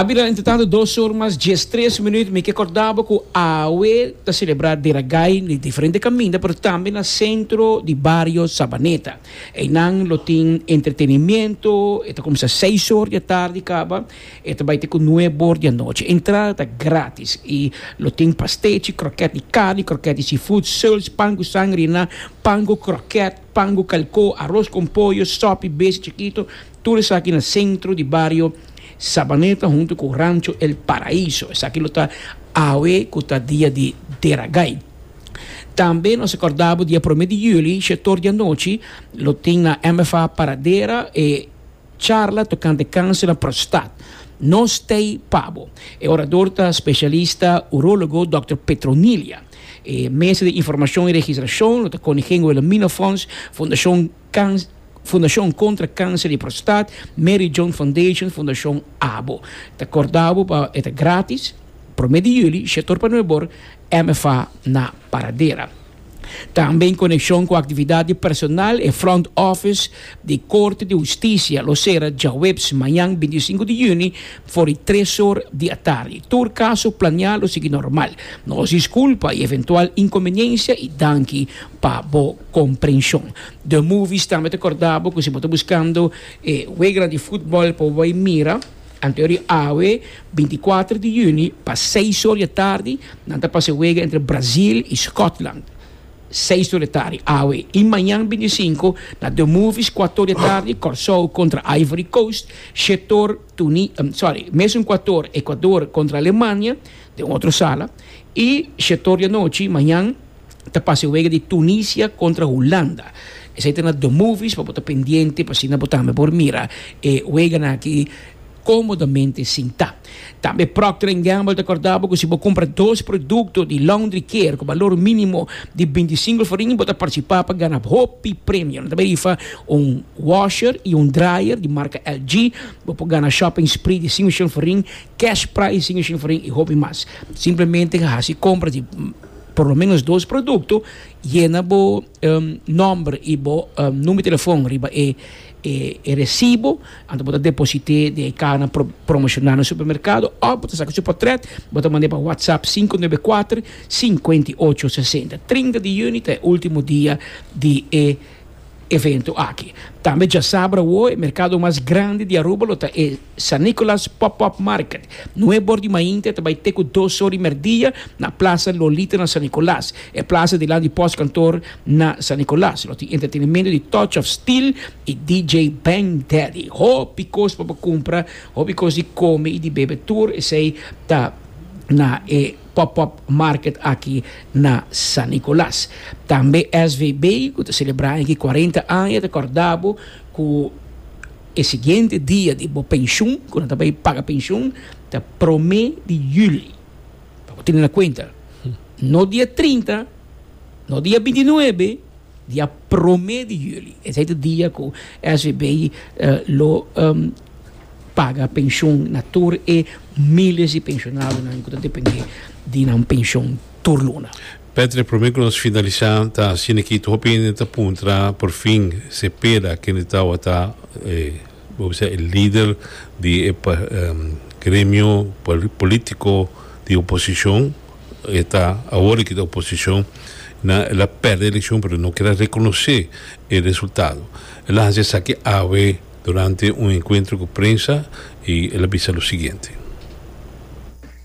A bira entretanto dos or mas dies tres minuut. Mi ke korda bo ku awe ta selebrá Dia da Gai den diferente kaminda pero tambe na sentro di bario Sabaneta. Einan lo tin entretenimiento, e ta kuminsá seis or di atardi kaba e ta bai te ku nueb or di anochi. Entrada ta grátis i lo tin pastechi, krokèt di karni, krokèt di sifoet, sèls, pan ku sangria, pan ku krokèt, pan ku kalkó, aros kon poyo, sòpi, bese chikitu. Tur esaki na sentro di bario Sabaneta huntu ku Rancho El Paraíso. Esaki lo ta awe ku ta dia di Deragai. Tambe nos a kòrda bo dia promé di yüli shetor di anochi lo tin na MFA Paradera e charla tokante kanser na prostat. Nos t'ei pa bo. E orador ta spesialista urólogo dòkter Petronilia. E mesa di informashon i registrashon lo ta Koninginhuilamina Fonds, Fundashon. Cans, Fundashon Kontra Kanser di Prostat, Mary John Foundation, Fundashon abo. Ta kordá bo pa e ta grátis, Promé di Juli, Shetor pa Nuebor, MFA na Paradera. Tambe en konekshon ku aktividat di personal e Front Office di Korte di Hustisia lo sera djaweps mañan binti i sinku di Juni for di tres or di atardi. Tur kaso planiá lo sigui normal. Nos diskulpa i eventual inkombeniensia i danki. Pa bo comprension. The Movies tambe ta corda bo cu si bo ta buscando e weganan di futbol pa bo bay mira, anto di awe binti cuater di juni pa seis or di tardi nan ta pasa e wega entre Brazil y Scotland. Seis or di tardi awe. Y mañan binti y sinku na The Movies cuater or di tardi Corsou contra Ivory Coast, shete or Tuni, sorry, mesun cuater or Ecuador contra Alemania den otro sala y shete or di anochi mañan. ta pasa e wega di Tunisia kontra Hulanda. Esei ta na Domovies pa bo ta pendiente pa asina bo tambe por mira e weganan aki komodamente sintá. Tambe Procter and Gamble ta kòrda bo ku si bo kumpra dos produkto di laundry care ku balor mínimo di bintisinko florin bo ta partisipá pa gana hopi premio. Nan ta bai rifa un washer i un dryer di marka LG. Bo por gana shopping spree di sin oshon florin, cash prize di sin oshon florin i hopi mas. Simplemente hasi kompra di. por lo menos dos producto yena bo um, nomber y bo um, number telefon riba e, e, e recibo anto bo ta deposite de e cana pro, promocional na supermercado of bo ta saca su portret bo ta mande pa whatsapp 594 5860 30 de juni ta e ultimo dia di e evento aki tambe ya sabra wo e mercado mas grande di Aruba lo ta e San Nicolas Pop-Up Market, nue bor di mainta, ta bai te ku dos or di merdia na Plaza Lolita na San Nicolas, e plaza dilanti di pòstkantoor na San Nicolas. Lo tin entretenementu di Touch of Steel i DJ Bang Daddy. Hopi kos pa bo kumpra, hopi kos di kome i di bebe tur esei ta na e Pop-Up Market aki na San Nicolas. Tambe SVB ku ta selebrá aki kuarenta aña ta kòrda bo ku. E siguiente dia di bo penshun, ku nan ta bai paga penshun, ta promé di juli. Pa bo tene na kuenta, no dia trinta, no dia binti nuebe, dia promé di juli. Esei ta dia ku SVB lo paga penshun na tur e míles di penshonadonan ku ta dependé di nan penshun. tur luna. Patrick, prome cu nos finalisa ta asina aki, tur hopi hende ta puntra por fin Cepeda kende tawata bo bisa e lider di e gremio politico di oposicion, e ta awor aki ta oposicion, na el a perde eleccion pero no kier a reconoce e resultado, el a haci esaki awe durante un encuentro cu prensa y el a bisa lo siguiente.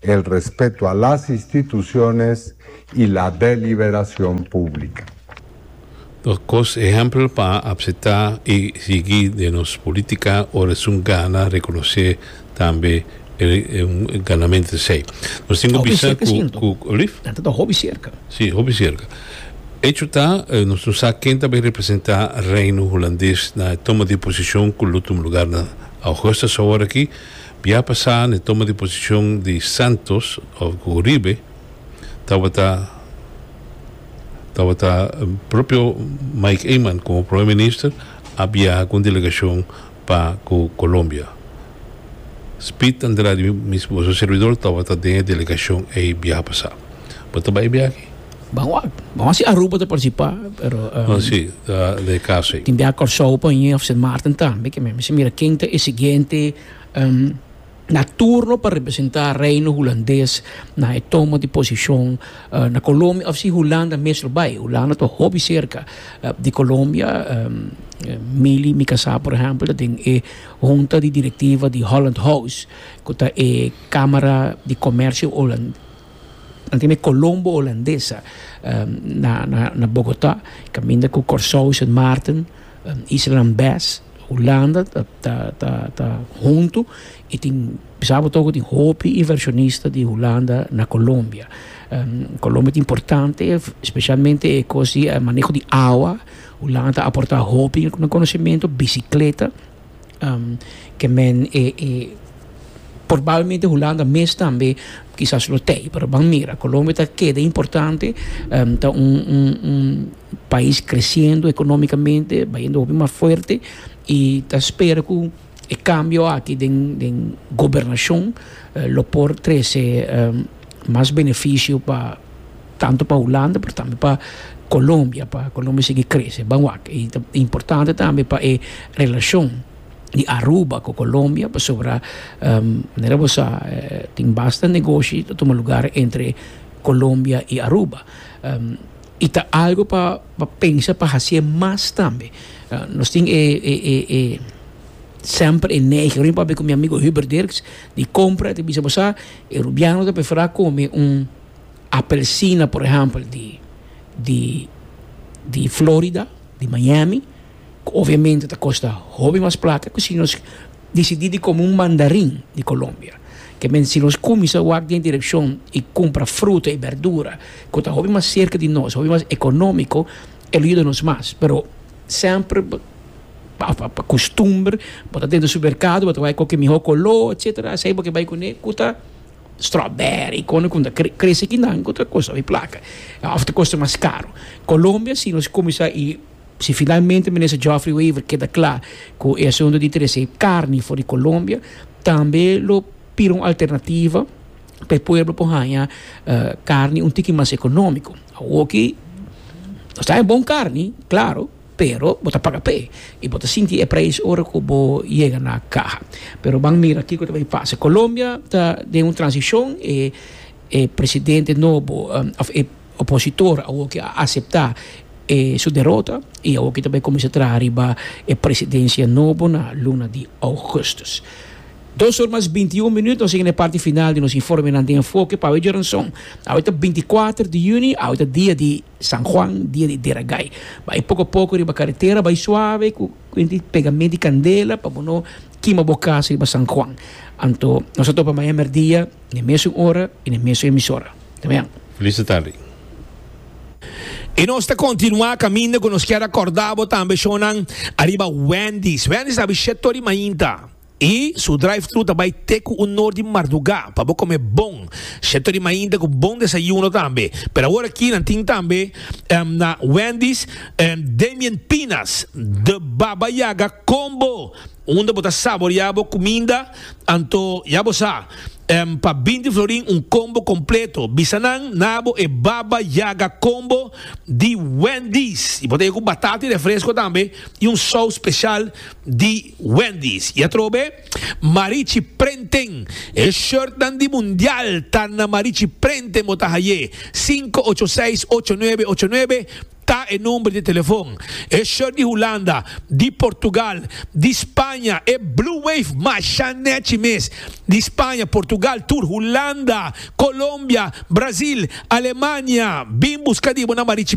El respeto a las instituciones y la deliberacion publica. Nos cos ehempel pa apseta y sigui den nos politica ora esun gana reconoce tambe el ganamento esey. Nos tin cu bisa cu, cu, alif? Nan ta hopi cerca. Si, hopi cerca. Hecho ta, nos no sa ken ta bay representa Reino Hulandes na e toma di posicion cu lo tuma lugar na Augustus aworaki, Bia pasá n'e toma di posishon di Santos òf ku Uribe tabata tabata propio Mike Eman komo Prome Minister a biaha ku un delegashon pa ku Kolombia. Speed Andrade mismu su servidor tabata den e delegashon ei biaha pasá. Bo ta bai biaha aki? Ban wak. Ban wak si Aruba ta participa pero um, Oh si, ta de casa ei. tin bia Kòrsou pa hini of Sint Maarten tambe ke men mester mira ken ta e siguiente um na turno pa representá Reino Hulandes na e tomo di posishon na Colombia of si Hulanda mes lo bai. Hulanda ta hopi serka di Colombia um Mili mi kasá por ehèmpel ta den e hunta di direktiva di Holland House ku ta e kámara di komèrsio Hulan. Nan tin e Colombo Holandesa na Bogota caminda cu Corsou Sint Maarten Isla Lambes Hulanda ta hunto y tin bisa bo toco tin hopi inversionista di Hulanda na Colombia Colombia ta importante specialmente e cos di maneho di awa Hulanda ta aporta hopi na conocimento bicicleta. ke men e porbablmente Hulanda mes tambe kisas lo tei pero ban mira Colombia ta keda importante ta un pais kresiendo ekonomikamente bayendo hopi mas fuerte i ta spera ku e kambio aki den gobernashon lo por trese mas benefisio pa. Tantu pa Hulanda pero tambe pa Colombia pa Colombia sigui crece ban wak y ta importante tambe pa e relacion di Aruba cu Colombia pasobra manera bo sa tin basta negoshi ta tuma lugar entre Colombia y Aruba y ta algo pa pensa pa hacier mas tambe nos tin e e semper e neiging aver papia cu mi amigo Hubert Dirks di compra y ta bisa bo sa e Rubiano ta prefera come un. Apelsina por ehempel di di di Florida di Miami ku obviamente ta kosta hopi mas plata ku si nos disidi di kome un mandarin di Colombia ke men si nos kuminsa wak den direkshon i kumpra fruta i berdura ku ta hopi mas serka di nos hopi mas ekonómiko e lo yuda nos mas pero semper pa kustumber bo ta den di supermerkado bo ta bai koke mihó koló etsetera esei bo ke bai kuné ku ta. strawberry con con ta crece aquí nan cu ta costa mi placa of ta costa mas caro Colombia si nos cuminsa y si finalmente minister Geoffrey Wever keda cla cu e asunto di trece carni for di Colombia tambe lo pira un alternativa pa e pueblo por haya carni un tiki mas economico awoki nos ta haya bon carni claro. Pero bo ta paga p'e i bo ta sinti e prijs ora ku bo yega na kaha. Pero ban mira kiko ta bin pasa. Colombia ta den un transishon. E e presidente nobo òf e opositor awor ke a aseptá e su derota i awor ke ta bai kuminsá traha riba e presidensia nobo na luna di ougùstùs. Dos or mas binti i un minüt nos yega na e parti final di nos informenan den enfoke pa awe djoranson. Awe ta binti i kuater di yüni, awe ta dia di San Juan dia di Deragai. Bai poko poko riba karetera, bai suave ku kuinti pegamé di kandela pa bo no kima bo kas riba San Juan. Anto nos a topa maña merdia den mesun ora i den mesun emisora. Ta bien. Felice tardi. I nos ta kontinuá kaminda ku nos kier akordá bo tambe shownan ariba Wendy's. Wendy's ta bichetory mainta. I su drive-thru ta bai te ku un or di mardugá pa bo kome bon sheto di mainta ku bon desayuno tambe. Pero awor aki nan tin tambe na Wendy's Damien Pinas The Baba Yaga Combo unda bo ta saboriá bo kuminda anto ya bo sa pa binti florin un combo kompleto. Bisa nan na bo e Baba Yaga Combo di Wendy's i bo ta e ku batata i refresko tambe i un sous speshal. di Wendy's y atrobe Marichi Prenten e shirtnan di Mundial ta na Marichi Prenten bo ta haye sinku ocho seis ocho nuebe ocho nuebe ta e number di telefon e shirt di Hulanda di Portugal di Spaña e Blue Wave masha nechi mes di Spaña Portugal tur Hulanda Colombia Brazil Alemania bin buska di bo na Marichi